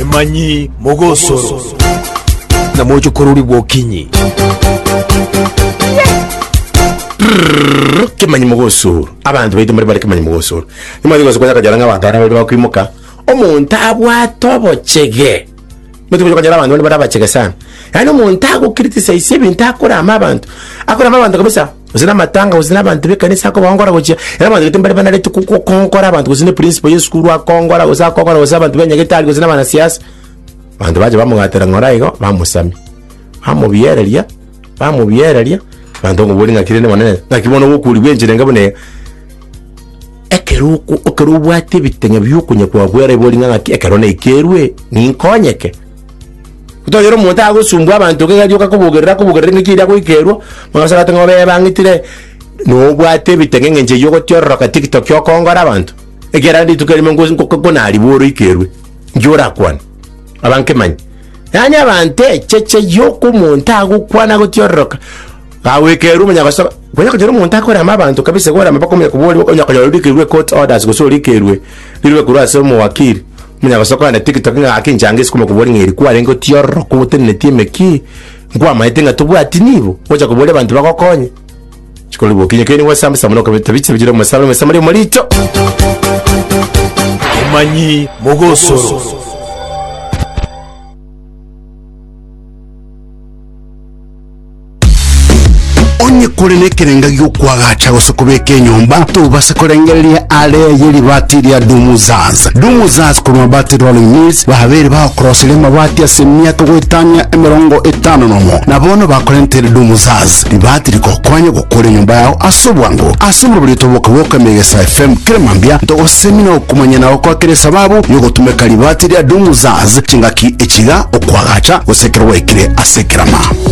Emanyi mogosoro. Na moche korori bwokinyi. kemanyi mogosoro abanto baito mbare bare kemanyi mogosoro nimanye gosoka yakajara ng'a abanto abana bari bakwimoka omonto abwate obochege nimanye gosoka yakajara abanto bari abachege sana yaani omonto agokritisize ebinto akorama abanto akorama abanto kabisa gose namatanga gose nabanto b'ekanisa akobongora gochia era abanto gete mbare banarete ko- ko- kongora abanto gose ne principal y'esukuru akongora gose akongora gose abanto b'enyagetari gose nabanasiasa abanto bacha bamogatera ng'ora igo bamosamia bamobiereria bamobiereria abanto bakomoboria ng'aki rende monene ng'aki bono ogokurigwa enchera enga buna eye ekeroko ekero obwate ebiteng'e biokonya kwabwera ebori ng'a ng'aki ekero naekerwe ninkonyeke. Toira omonto agosumbwa abanto iga rioka kobogerera akobogerera eng'encho eria agoikerwa, bono ase agotebi ng'a obe ebang'itire nobwate ebiteng'e eng'encho eyio ogotiororoka tiktok okongora abanto, ekiagera rende rituko erimo nko- nko- nkonaribu ore oikerwe, inki orakwane? abankemanye. Yaani abanto echeche yoka omonto agokwana agotiororoka, Gawekerwe omonyagosoa, konya konyora omonto akorema abanto kabisa igoro amaboko omuya koborwa onya konyora orikerwe ecourt orders gose orikerwe rirobe korwa ase omowakiri omonyagosoa kogenda tiktok ng'a gaki enchanga ase komokobori ng'a eri kwarenge otiororoka ogoteneneti emekii nkwamaete ng'a tobwati nibo gocha koboria abanto bagokonye chikorwa boki inye keri nigo osamba samba nokobeta ebiche bire omosabe omosabe ri omorito Omanyi mogosoro. Onye kore nekerenga gi'okwagacha gose kobeka enyomba, tobase korengereria aare ye ribaati ria Dumuzaz. Dumuzaz korwa Mabati Rolling Mills babeire bagokoroseria amabati ase emiaka goetania emerongo etano nomo, na bono bakorentere Dumuzaz ribaati rigokonye gokora enyomba yao ase obwango. Ase oborobori otoboke bw'oka Emegesa FM kera mambia, ntogosemi na okomanya na gokoa kera esababu y'ogotumeka ribaati ria Dumuzaz chingaki echiiga, okwagacha gose ekero gwaikire ase ekerama.